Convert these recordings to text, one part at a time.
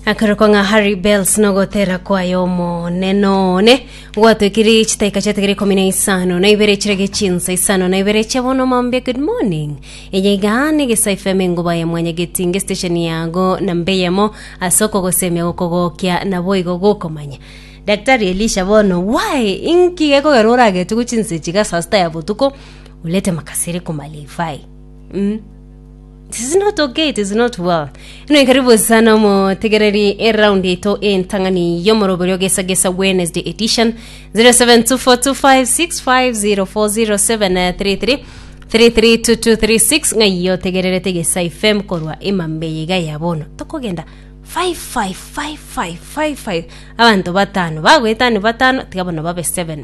akarokwa ng'a harry bells nogotera kwaye omoneno one gwatwekiri chitaika chiategere ikomi na isano na ibere chirege chinsa isano na ibere chia bono mambia good morning eye iga negesa ifm engoba ya mwanya getinge station yago na mbeyemo ase okogosemia gokogokia nabo igo gokomanya daktari elisha bono why inki gekogera oragete gochinsa echiga saa sita ya botuko ulete makasiri kumalifai mm. It is not okay, it is not well. Ino ikaribu sana omotegereri eround yaito entang'ani y'omoroberi ogesagesa Wednesday edition 07242565040733 332236 ng'ai otegererete gesa ifem korwa emambe yiga ya bono tokogenda 555555 abanto batano bagwetani batano tiga bono babe 7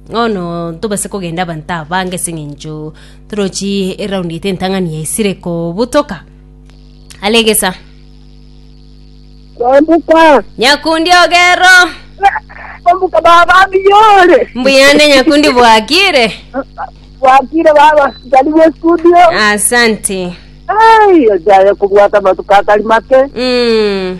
Bono ntobase kogenda abanto abange ase eng'encho torochi eraundi yaito entang'ani yaisire kobutoka. Are egesa. Kwambuka. Nyakundi ogero. Kwambuka baba biyore. Mbuyande nyakundi bwakire. Bwakire baba. Karibu studio. Asante. Ai, ojaye kubwata amatuko atari make. Mm.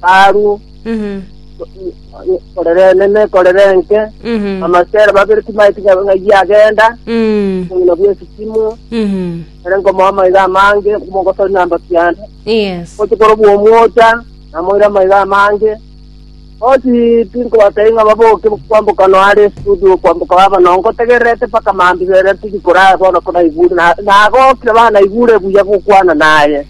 Saru, korera enene, korera enke, amasera babere timaeti ng'a ng'a iye agenda, obong'ina bw'esisimo, ere nkomoa amaiga amange, mogosori na mbatu yane. Yes. Gochi kore bw'omwocha, namoire amaiga amange. Gochi tinkobatebia ng'a baboke kwamboka no are estudio kwamboka baba no, ngotegererete mpaka mambia ere tiri korara bono konaigure, na- nagokire banaigure buya gokwana naye.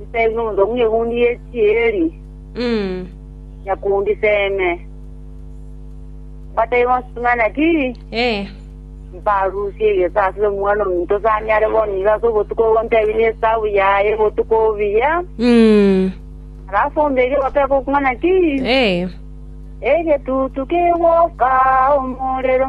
Nse ng'umbe bw'egundi ye chieri, nyakundi seme. Mbataibe onsitung'ane ki? Eh. Mbarusie egesaasi y'omwana ominto sanyare bono iga ase obotuko obo ntebi nesabu yaye botuko obuya. Alafu ombe egegoto ekokung'ana ki? Egetutu kegoka omorero.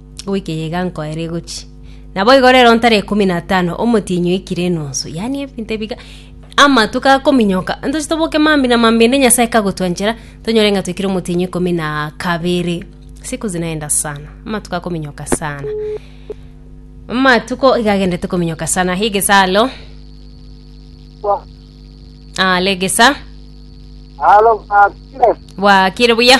goika eyeiga nko ere egochia. Naboigo rero ntare ikomi na tano omotienyi oikire enonso, yaani ebinto ebiga amato gakominyoka ntoche toboke mambi na mambi ende Nyasae kagotwanchera tonyore ng'a toikire omotienyi ikomi na kabere. Siku zinaenda sana, amatuko akominyoka sana. Amatuko iga agendete kominyoka sana. Higesa alo. Ah, legesa. Halo, Father. Bwakire buya.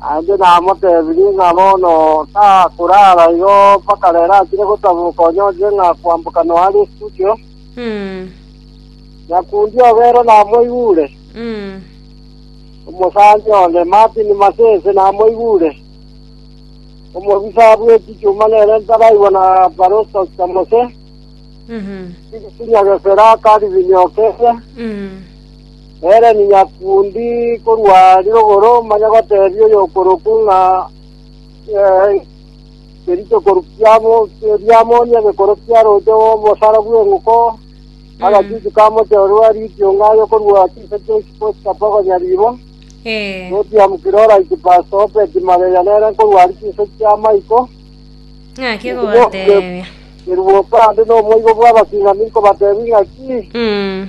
Naende namotebirie ng'a bono takoraara igo mpaka rero achire gotaboka onye onchire ng'a kwamboka noa are esuguchio. Nyakundi obo ere namoigure, omosaani onde Martin Masese namoigure, omobisa bwe chichuma nere ntaraigwa na Paroso Chamose, Senior Gesera Calvin Okere, Nere ninyakundi korwa rirogoro, manya gotebia oyokoroku ng'a ngerite korukia riamoni egekoro kia roche rw'obosara bw'eng'uko, agachuchu ka mochororo a rikiunga aye korwa chiise chia isiko chitapa konya ribo, Notiamu Kilora Ikipaso Obedi Mageria nere nkorwa aria chiise chia Maiko, Ng'aki gobatebia. Kerubo Obadi nomoigo bw'abasing'ani nkobatebia ng'aki, Mm.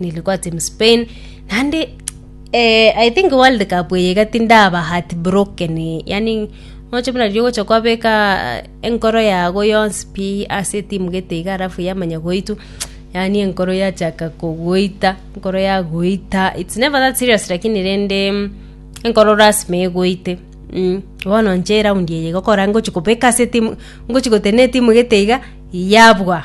nilikuwa team Spain naende eh, I think World Cup eye iga tindaba heartbroken yani noche buna riria ogocha kwabeka eh, enkoro yago yonsi pi ase etimu gete iga alafu yamanya goitwa yani enkoro yachaka kogoita enkoro yagoita it's never that serious lakini rende mm, enkoro lasima egoite mm. bono nche eraundi eye gokora ngochi kobeka ase etimu ngochi gotena etimu gete iga yabwa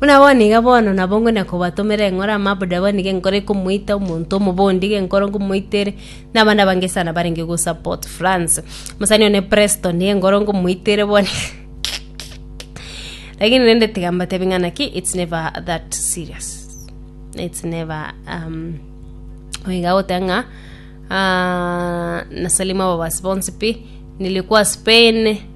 Buna bono iga bono nabo ngwenda kobatomera eng'ora amaabori abo nigo enkoro ekomoita omonto omobe onde iga enkoro nkomoita ere na abande abange sana barenge go support France. Omosani one Preston nigo enkoro nkomoita ere bono lakini rende tiga mbatebie ng'a naki it's never that serious it's never um, oiga goteba ng'a ah, nasalima ababasi bonsi pi nilikuwa Spain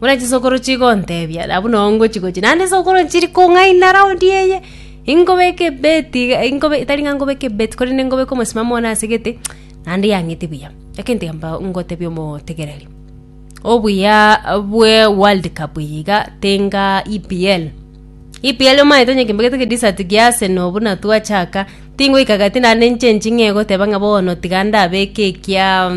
Buna chisokoro chigontebia, nabu nao ngochi gochia. Naende esokoro nchiri kong'aina raundi eye, inkobeka ebeti iga- inkobe tari ng'a nkobeka ebeti, korende nkobeka omosimamo one ase egete, naende yang'iti buya. Egento ekio mbao ngotebia omotigereri, obuyaaa bwe world cup eye iga, tinga EPL. EPL omanyete onye kimbegete ki desert kia Arsenal buna twachaka, tingoika gati naende nchenching'e egoteba ng'a bono tiga ndabeke ekiaa.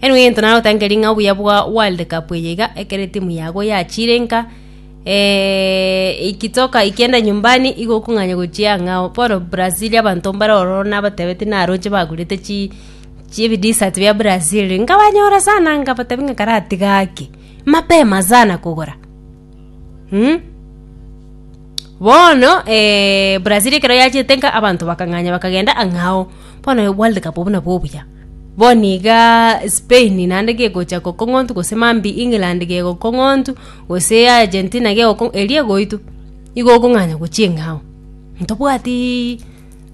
Erio egento narotangerie ng'a obuya bwa world cup eye iga, ekero etimu yago yachire nka eeeeeeeeee ikitoka ikienda nyumbani igo okong'anya gochia ang'ao oo bono Brazil abanto mbare ororo nabatebeti naroche bagurete chi chibi dessert bia Brazil, nkabanyora sana nkabatebi ng'a karatiga ake, mapema sana kogora. Mm. bono eh, brazil ekero yachete nka abanto bakang'anya bakagenda ang'ao bono world cup buna bobuya bono iga spain naende gegocha gokong'ontu gose mambi england gegokong'ontu gose argentina gegoko eria egoitwa igo okong'anya gochia eng'ao ntobwatiiii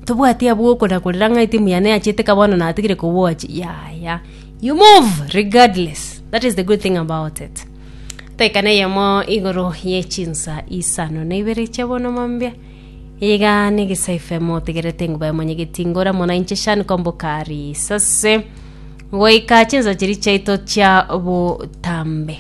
ntobwati abwo okona korera ng'a etimu yane yachete ka bono natigire kowochi yaya you move regardless that is the good thing about it. Toikana eyemo igoro ye chinsa isano na ibere chia bono mombia. Iga negesaife motegerete nguba emonyegeti ngora mona inche shani kombokari sase goika chinsa chiri chiaito chia botambe.